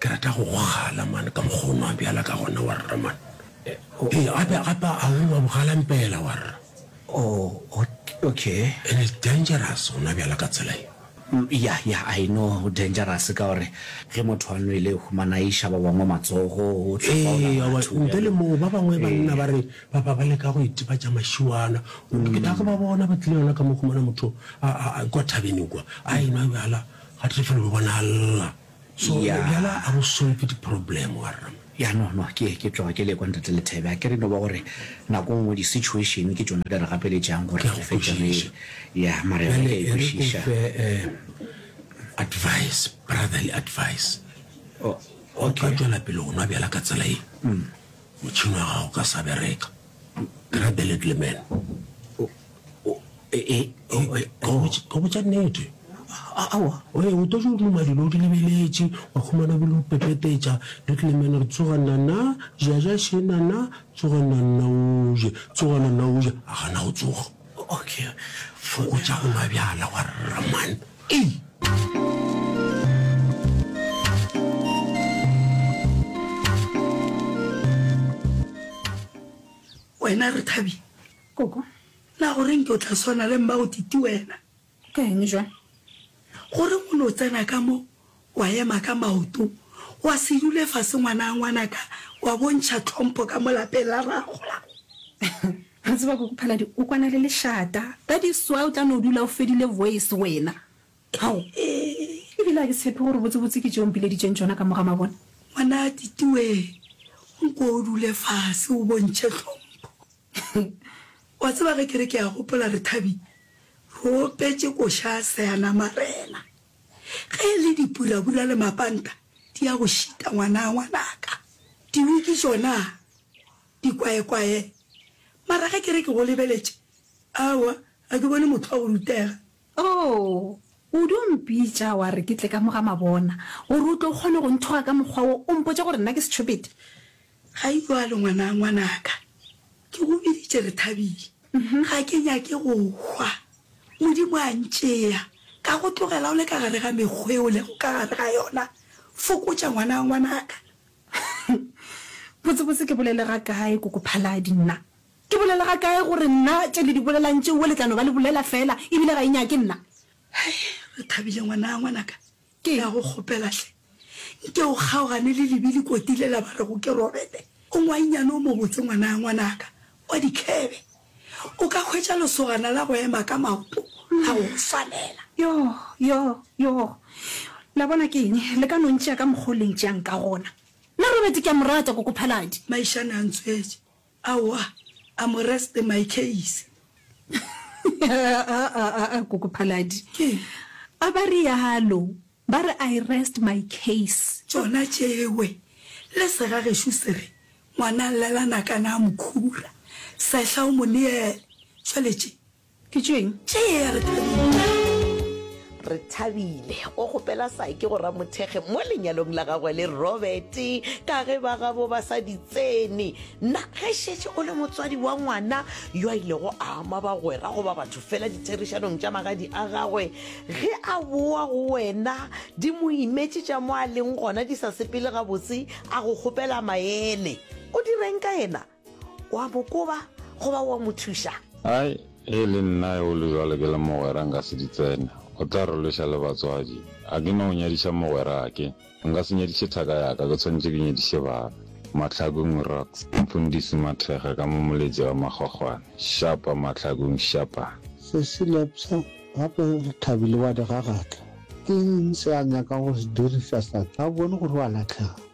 Ke rata go go gala man ka mokgwa o nwa bjala ka gona warra man. Ee, gape gape a o nwa bogala mpela warra. Oh, okay. And it's dangerous go nwa bjala ka tsela ye. Yeah, yeah, I know go dangerous ka gore ge motho a nwele o humana a iša ba bangwe matsogo, o tlhobaola Ee, aowa, batho ntle le bjalo. moo ba bangwe ba nna ba re ba ba ba leka go itebatša mašiwana. Ke tla go ba bona ba tlile yona ka mo humana motho a a- a kwa thabeng kwa a enwa bjala ga tefelo ba bonala. So Eya. le bjala a go solve di problem wa rra. Ya no no ke ke tloga ke le kwa ntate Lethebe a ke re no ba gore nako nngwe di situation ke tšona di re gapeletšang gore Ke a go re fetše re kwešiša. ya mare re Bjale ka e re ko ikwešiša fe eh, advice brotherly advice O- o okay. ka tšwela pele go nwa bjala ka tsela ye motšhini wa gago ka sa bereka grab a little man go botša nnete awa o ye o tojo duma dilo di lebeletše wa khumana bile o pepetetša little man re tsoga nana jaja še nana tsoga nana oje tsoga nana oje a gana go tsoga okay fokotša go nwa bjala wa rraman ei wena re thabi Koko, Na go re nke o tla swana le mma'o Titi wena? Ka eng bjang? Go re o no tsena ka mo, wa ema ka maoto, wa se dule fase ngwanaa ngwanaka, wa bontšha tlhompho ka mo lapeng la rraa golago. Wa tseba Koko Phaladi o kwana le lešata, that is why o tla no dula o fedile voice wena. Ao, e bile a ke tshepe gore botsebotse ke tše o mpileditšeng tšona ka mo ga mabone. Ngwanaa Titi wee, nko o dule fase o bontšhe tlhompho. Wa tseba ge ke re ke a gopola re Thabi re opetše koša seana marena ge e le dipurabura le mapanta di ya go šita ngwanaa ngwanaka diwiki tšona dikwaekwae mara ge ke re ke go lebeletše aowa ga ke bone motho wa go rutega. Oo Udu o mpitša wa re ke tle ka mo ga Mabona gore o tle o kgone go nthoga ka mokgwa wo o mpotše gore nna ke setšhopete Ga e bjalo, ngwana, ngwanaka. Ke go biditše re thabile. Ga ke nyake go hwa. Modimo a ntšea, ka go tlogela o le ka gare ga mekgwa e o lego ka gare ga yona. Fokotša, ngwana, ngwanaka. Botsebotse ke bolele ga kae, Koko Phaladi? Nna? Ke bolele ga kae gore nna tše le di bolelang tšeo le tla no ba le bolela feela, ebile ga e nyake nna? Hei, re thabile, ngwana, ngwanaka. Ke ya go kgopela hle, nke o kgaogane le lebili koti lela ba rego ke Robete. O ngwainyane o mobotse ngwana ya ngwanaka wa dikhebe. O ka hwetša lesogana la go ema ka maoto la go go swanela. Yoh, yoh, yoh. La bona ke eng? Le ka no ntšea ka mokgwa o le ntšeang ka gona. Nna Robete ke a mo rata, Kokophaladi. Maišane a ntswetše. Aowa, a Moresete my case. Aa, Koko Phaladi. Keng? A ba realo, ba re I rest my case. Tšona tšewe, le sega gešo se re, Ngwana a llela nakana a mo khura, sehla o mo neele. Tšwale tše, Ke tšeng? Tše ya re thabile. Re thabile o kgopela Saki go ramothekge mo lenyalong la gagwe le Robert ka ge ba gabo ba sa di tsene. Na ge šetše o le motswadi wa ngwana yo a ilego a ama bagwera goba batho fela ditherišanong tša magadi a gagwe, ge a boa go wena di mo imetše tša mo a leng gona di sa sepele gabotse, a go kgopela maele, o direng ka yena? O a mo koba goba o a mo thuša? Ai, ge e le nna eole jwale ke le mogwera nka se di tsene. O tla re lweša le batswadi. A ke no nyadiša mogwerake. Nka se nyadiše thaka ya ka, ke tshwanetše ke nyadiše bana. Mahlakong Rocks, Mfundisi Mathekga ka mo Moletsi wa Magogwane. Shapa Mahlakong, shapa! Sesi Lepso, Gape re thabile wa di gagatla. Ke eng se a nyaka go se diriša sa? Ga o bone gore o a lahlega?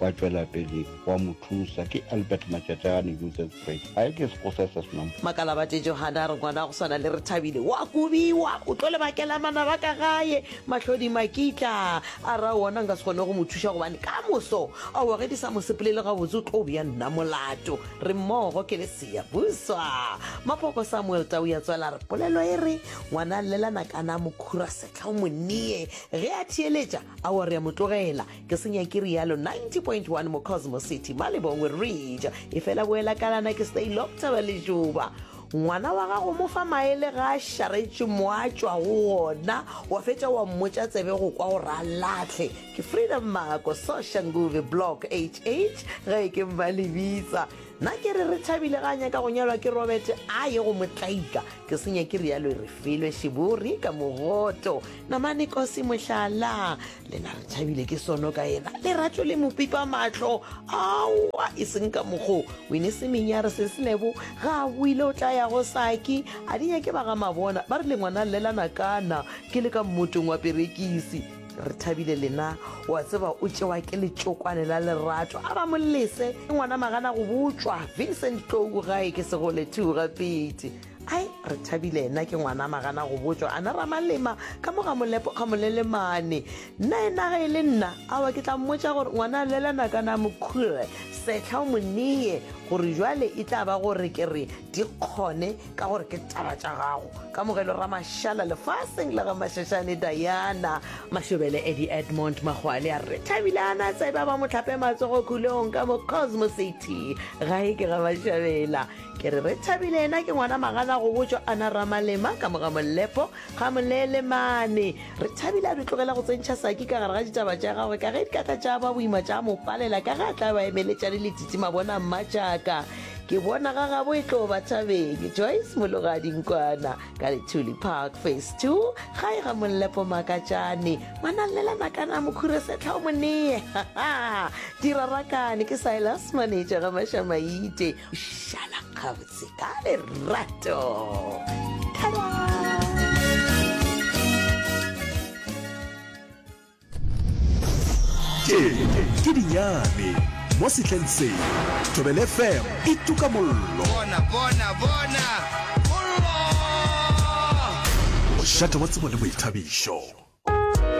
wa tšwela pele wa mo thusa ke Albert Matšatšane Joseph Fred a ke se go se se senang Makalabate Johane a re ngwana wa go swana le Rethabile wa kobiwa o tlo le bakela manaba ka gae Mahlodi Makitla a ra wona nka se kgone go mo thuša gobane ka moso a wa ge di sa mo sepolele gabotse o tlo bja nna molato re mmogo ke le seya buswa Mapoko Samuel Tau ya tswela re polelo e re ngwana a llelana kana mokhura setla o mo neye ge a theeletša a wa re ya mo tlogela ke senya ke rialo 90.1 mo cosmo city malebongwe reja e fela boela kalana ke stay loctaba le juba ngwana wa gago mo fa maele ga a šaretše mo a tšwa go ona wa fetša wa mmotša tsebe go kwa gore a latlhe ke freedom mako soshanguve block hh ge ke mma lebitsa nna ke re re thabile ga a nyaka go nyalwa ke robert a ye go motlaika ke senya ke rialo e re felwe šebori ka mogoto namane kosi mohlala lena re tšhabile ke sono ka ena leratšo le mopitwa matlho aowa e seng ka mokgo wene semenyare se senebo ga a boile o tla ya go saki a di nyake ba ga mabona ba re le ngwana llelana kana ke le ka mmotong wa perekisi re thabile lena wa tseba o tšewa ke letšokwane la lerato a ba molese ke ngwana magana go botswa vincent tlou gae ke segole two gapedi Ai, re thabile ena ke ngwana magana go botšwa ana ramalema ka mo ga molepo ga molelemane nna ena ga e le nna awa ke tla mmotša gore ngwana a lelana ka na mokhure setlha o moneye gore jwale e tla ba gore ke re di kgone ka gore ke taba tša gago ka mogelo ramašala lefaseng la ga mashashane diana mashobele edi edmond magwale a re thabile ana tseba ba motlhape matsogo khulong ka mo cosmosity gae ke ga mashabela Ke re re thabile ena ke ngwana magana go botšwa ana ramalema ka moga mollepo ga molele mane re thabile a di tlogela go tsentšha saki ka gare ga ditaba tša gagwe ka ge di ka tla tša ba boima tša mo palela ka ge a tla ba emeletša le letiti mabona mmatšaka ke bona ga gabo e tlo ba thabeng joyce mologadinkwana ka lethuli park face two ga e ga mollepo makatšane manallela nakana mokhure setlha o monee dirarakane ke silas manetša ga mašamaite šala gabotse ka lerato tše ke dinyane mo setleng se tobel fm e tuka mollo bona bona bona mollo mošate wa tsebo le boithabišo